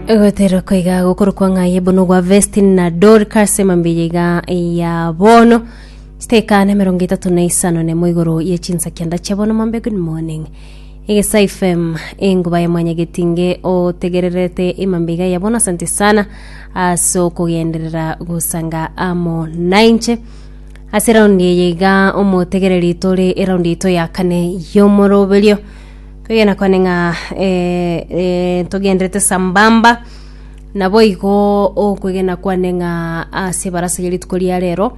Egoterera koiga gokoro kwa ng'aye bono gwa Vesti na Dorcas emambia iga ya bono chiteka na emerongo etato na isano nemo igoro ye chinsakia ndache bono mambe good morning egesa fm enguba ya mwanyagetinge otegererete emambia iga ya bono asante sana ase okogenderera gosanga amo nainche ase raundi eye iga omotegereri tore eraundi yaito ya kane y'omoroberio Twegena kwane ng'a eh, eh, togenderete sambamba naboigo okwegena kwane ng'a ase ebarasa ya rituko ria rero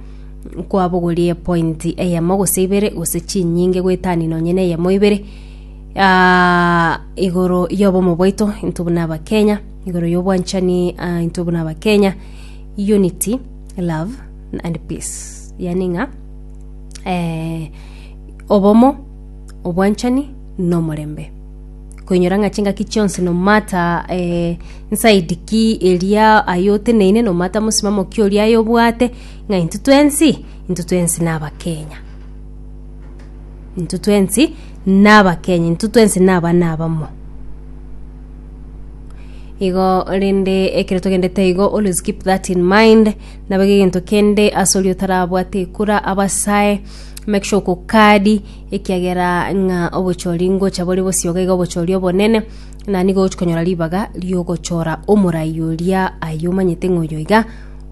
kwabogorie pointi eyemo gose ibere gose chinyinge goetani nonye na eyemo ibere ah, igoro y'obomo bwaito intwe buna abakenya igoro y'obwanchani ah, intwe buna abakenya unity love and peace yani ng'a eh, obomo obwanchani, na omorembe. Koinyora ng'a chingaki chionsi nomata eh, inside ki eria aye oteneine nomata mosimamo ki oria aye obwate ng'a intwe twensi intwe twensi nabakenya intwe twensi nabakenya intwe twensi nabana abamo igo rende ekero togendete igo always keep that in mind nabo egento kende ase oria otarabwate ekura abasae Make sure okokadi ekiagera ng'a obochori ngocha bore bosio iga iga obochori obonene na nigo ogochia konyora ribaga riogochora omorai oria aye omanyete ng'a oyo iga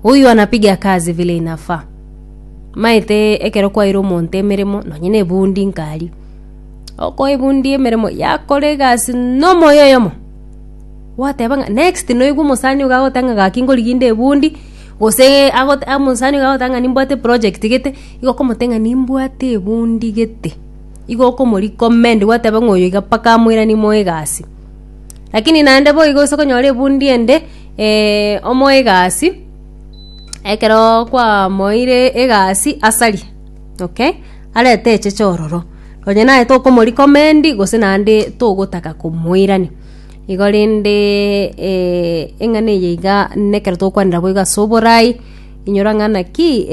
huyu anapiga kazi vile inafaa maete ekero kwaeire omonto emeremo nonye na ebundi nkari okoa ebundi emeremo yakora egasi na omoyo oyomo gwateba ng'a next noiwa omosani iga agoteba ng'a gaki ngorigia inde ebundi gose agote mosani iga agoteba ng'a nimbwate eprojegti gete. Igo okomoteng'ena nimbwate ebundi gete. Igo okomorikomend gwateba ng'a oyo iga mpaka amoiranie moe egasi. Lakini naende boigo gose okonyora ebundi ende eh, omoe egasi, ekeroo kwamoeire egasi asari, okay? Arete echeche ororo. Onye naye tokomorikomend gose naende togotaka komoirania. Igo rende eng'ana eye iga nekero togokwanera boigo ase oborai. Inyora ng'a naki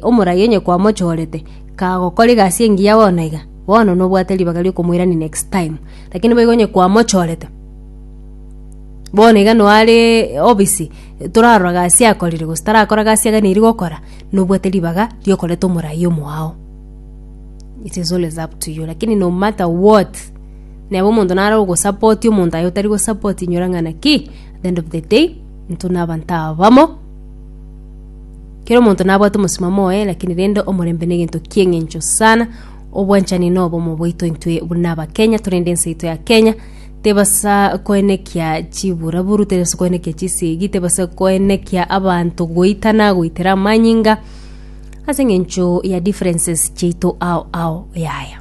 omoraia onye kwamochorete kagokora egasi engiya bono iga, bono nobwate ribaga riokomoirania next time. Lakini boigo onye kwamochorete, bono iga noo are obisi, torarora gasi akorire gose tarakora gasi aganeri gokora, nobwate ribaga riokoreta omoraia omwao. It is always up to you lakini no matter what, neba omonto nare ogosapotia omonto aye otari gosapotia inyora ng'a naki, at the end of the day. Intwe nabanto abamo, kera omonto nabwate omosimamo oye, lakini rende omorembe negento ki'engencho sana. Obwanchani nobomo bwaito intwe buna Abakenya torende ense yaito ya Kenya tebasa koenekia chiburaburu, tebasa koenekia chisegi, tebasa koenekia abanto goitana goitera amanyinga ase engencho ya differences chiaito ao ao yaya.